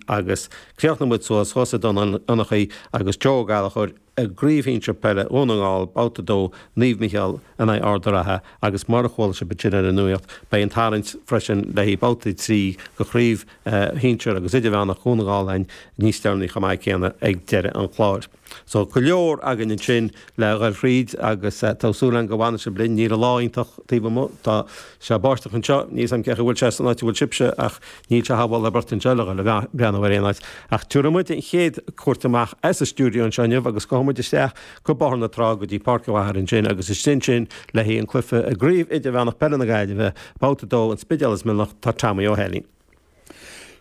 agus chríochnaigh muid suas thuas i nDún Fionnachaidh agus Joe Ó Gallchóir i gcraobh shinsir peile Dhún na nGall, babhta 2, Naomh Micheál in aghaidh Ard a' Rátha agus mar a chuala sibh ansin ar an nuacht, beidh an tarraingt freisin léi babhta 3 go chraobh shinsir agus idirmheánach Dhún na nGall a'ainn níos deireanaí chomh maith céanna ag deireadh an chláir. So go leor againn ansin le dhul thríd agus tá súil againn go bhfanfaidh sibh linn. Níl an lá iontach taobh amuigh, tá sé báisteach anseo, níl 's a'm cén chaoi a bhfuil sé san áit a bhfuil sibhse ach níl sé thar mholadh beirte anseo le dhul a' breathnú ar aon áit. Ach tabharfaidh muid an chéad chuairt amach as an stiúideo anseo inniu agus gabhfaidh muid isteach go Bóthar na Trá go dtí Páirc an Phiarsaigh ansin agus istigh ansin le haghaidh an cluife i gCraobh Idirmheánach Peile na Gaillimhe, babhta 2, An Spidéal is Mionlach, tá Tommy Ó hEilín.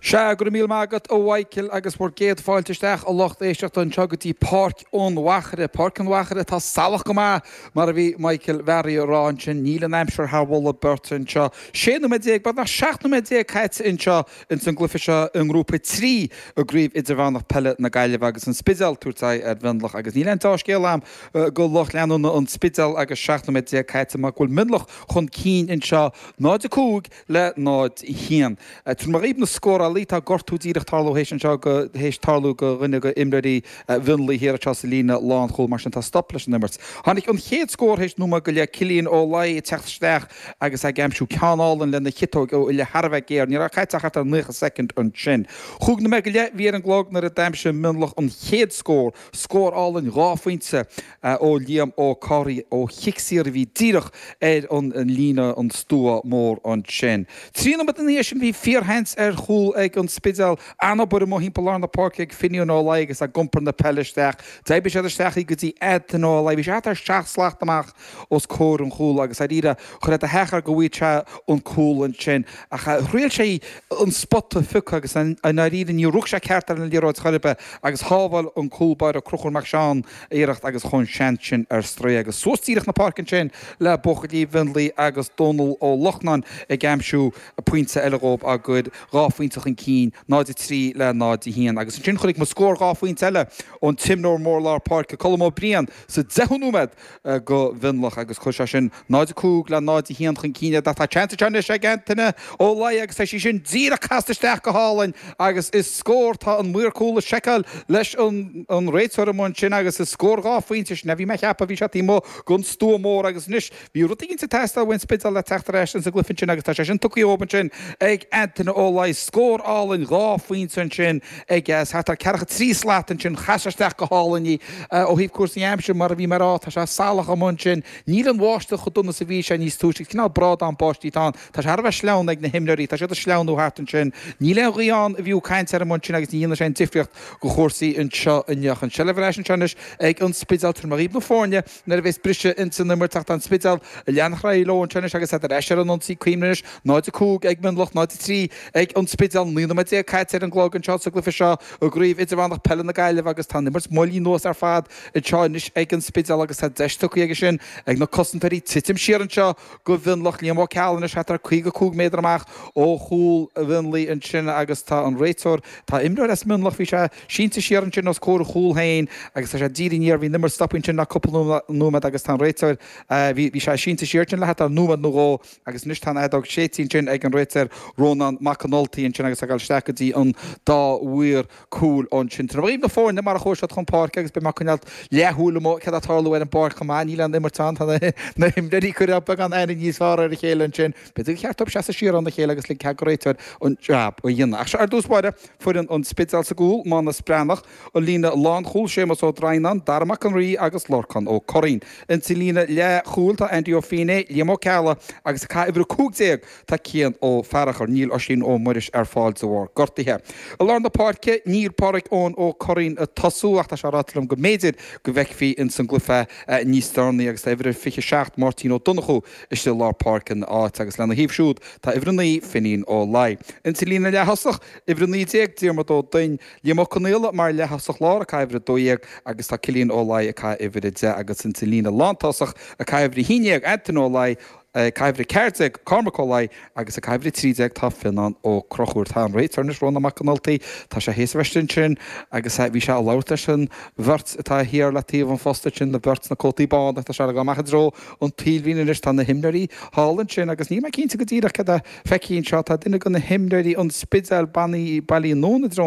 Sea, go raibh míle maith agat a Mhichíl agus bhur gcéad fáilte isteach a lucht éisteachta anseo go dtí Páirc an Phiarsaigh. Páirc an Phiarsaigh atá salach go maith mar a bhí Micheál Mháire a rá ansin. Níl an aimsir thar mholadh beirte anseo. Sé nóiméad déag, beagnach seacht nóiméad déag caite anseo ins an gcluiche seo i ngrúpa trí i gcraobh idirmheánach peile na Gaillimhe agus an Spidéal tabhairt aghaidh ar Mhionlach agus níl aon deá-scéal a'm go lucht leanúna an Spidéil agus seacht nóiméad déag caite mar go bhfuil Mionlach chun cinn anseo, 0-5 le 0-1. Tabharfaidh mé díbh na scórálaithe, tá gortú díreach tarlú théis anseo go, théis tarlú go dhuine go imreoirí Mhionlaigh thiar anseo sa líne lán chúl, mar sin tá stop leis an imirt. Tháinig an chéad scór théis nóiméad go leith, Cillian Ó Laidhe ag teacht isteach agus ag aimsiú ceann álainn lena chiotóig ó uillinn thar a bheith géar. Ní raibh caite ach thart ar naocha soicind ansin. Chúig nóiméad go leith a bhí ar an gclog nuair a d'aimsigh Mionlach an chéad scór, scór álainn dhá phointe, ó Liam Ó Carthaigh ó chic saor a bhí díreach ar an líne, an stua mór ansin. Trí nóiméad ina dhiaidh sin bhí fíorsheans ar chúl ag An Spidéal. An-obair amuigh thimpeall lár na páirce ag Finnian Ó Laidhe agus ag iompar na peile isteach. D'oibrigh siad isteach í go dtí Antaine Ó Laidhe. Bhí sé thart ar seacht slat amach os comhair an chúil agus dháiríre cuireadh sé de cheart air go bhfaigheadh sé an cúl ansin ach thriail sé an spota a phiocadh agus i ndáiríre níor rug sé ceart ar an liathróid chor ar bith agus shábháil an cúlbáire Cruchúr Mac Seáin iarracht agus chuaigh an seans sin ar strae agus suas díreach na páirce ansin le buachaillí Mhionlaigh agus Dónal Ó Lochnáin ag aimsiú pointe eile dhóib á gcur dhá phointe chun cinn, 0-3 le 0-1. Agus ansin chonaic muid scór dhá phointe eile ón imreoir mór lár páirce Colm Ó Briain sa deichiú nóiméad go Mhionlach agus chuir sé sin 0-5 le 0-1 chun cinn ó tá seans anseo anois ag Antaine Ó Laidhe agus tá sí sin díreach casta isteach go hálainn agus is scór tá an maor cúl ag seiceáil leis an réiteoir amuigh ansin agus is scór dhá phointe sin a bhí mé a cheapadh bhí sé taobh amuigh den stua mór agus anois bhí rud éigin ag teastáil ón Spidéal le teacht ar ais ins an gcluiche ansin agus tá sé sin tugtha dhóib ansin ag Antaine Ó Laidhe scór álainn dhá phointe ansin ag thart ar ceathracha trí slat ansin chas sé isteach go hálainn í ó thaobh cúrsaí aimsire mar a bhí mé a rá tá sé salach amuigh ansin Níl an bháisteach chomh dona is a bhí sé níos túisce. agus cineál brádán báistí atá ann. Tá sé thar a bheith sleamhain ag na himreoirí. Tá siad ag sleamhnú thart ansin. Níl aon ghaoth ann ab fhiú caint air mar sin agus ní dhéanfaidh sé aon difríocht do chúrsaí anseo inniu. An tseilbh ar ais anseo anois ag An Spidéal. Tabharfaidh mé dhaoibh na foirne nuair a bheas briseadh ins an imirt ach tá An Spidéal ag leanacht ar aghaidh leo anseo anois agus iad ar ais ar an ionsaí. Cuimhnigh anois, 0-5 ag Mionlach, 0-3 ag An Spidéal. Naoi nóiméad déag caite ar an gclog anseo sa gcluiche seo i gCraobh Idirmheánach Peile na Gaillimhe agus tá an imirt moillithe anuas ar fad. anseo anois ag an Spidéal agus tá deis tugtha aige sin ag na cosantóirí titim siar anseo do Mhionlach. Liam Ó Ceallaigh anois thart ar 55 méadar amach ó chúl Mhionlaigh ansin agus tá an réiteoir, tá imreoir as Mionlach, bhí sé sínte siar ansin os comhair a chúl féin agus tá sé ag díriú aniar, bhí an imirt stoptha ansin le cúpla nóiméad agus tá an réiteoir, bhí, bhí sé sínte siar ansin le thart ar nóiméad nó dhó agus anois tá an fheadóg séidte ansin ag an réiteoir Rónán Mac an Ultaigh ansin agus tá ag dul isteach go dtí an dá mhaor. cúil ansin. Tabharfaidh mé dhaoibh na foirne mar a chuaigh siad chun páirce agus beidh mé ag coinneáil leathshúil amuigh céard atá ag tarlú ar an bpáirc chomh maith. Níl aon imirt ann. Tá na himreoirí ag cur beagán aithne níos fearr ar a chéile ansin. B'fhéidir gur cheart dóibh seasamh siar óna chéile agus ligean cead don réiteoir an jab a dhéanamh. Ach seo ar dtús báire foireann an Spidéil sa gcúl, Mánus Breathnach, an líne lánchúil, Séamus Ó Droighneáin, Dara Mac an Rí agus Lorcán Ó Curraoin. Insa líne leathchúil tá Andy Ó Fínné, Liam Ó Ceallaigh agus ag caitheamh uimhir 15, Tá Cian Ó Fearchair. Níl Oisín Ó Muiris ar fáil de bharr gortaithe. I lár na páirce, níl Pádhraic Eoin Ó Curraoin ag tosú ach tá sé ráite liom go mb'fhéidir go bhfeicfí ins an gcluiche é níos deireanaí agus tá uimhir a 27 Máirtín Ó Donnchú istigh i lár páirce ina áit agus lena thaobh siúd tá uimhir a naoi Finín Ó Laoi. Insa líne leath-thosach, uimhir a naoi déag Diarmaid Ó Doinn, Liam Ó Conaola mar leath-thosach lár ag caitheamh uimhir a dó dhéag agus tá Cillian Ó Laoi ag caitheamh uimhir a deich agus insa líne lán-tosach ag caitheamh uimhir a haon déag Antoin Ó Laoi, Ag caitheamh uimhir 14 Cormac Ó Laoi agus ag caitheamh uimhir 13 tá Fionnán Ó Conchúir. Tá an réiteoir anois Rónán Mac an Ultaigh. Tá sé théis a bheith istigh ansin agus bhí sé ag labhairt leis an bheirt atá thiar le taobh an phosta ansin, an bheirt sna cótaí bána. Tá sé ag dul amach i dtreo an taobhlíne anois. Tá na himreoirí thall ansin agus níl mé cinnte go díreach céard a feicfidh anseo. Tá duine de na himreoirí an Spidéil ag bailiú anonn i dtreo an.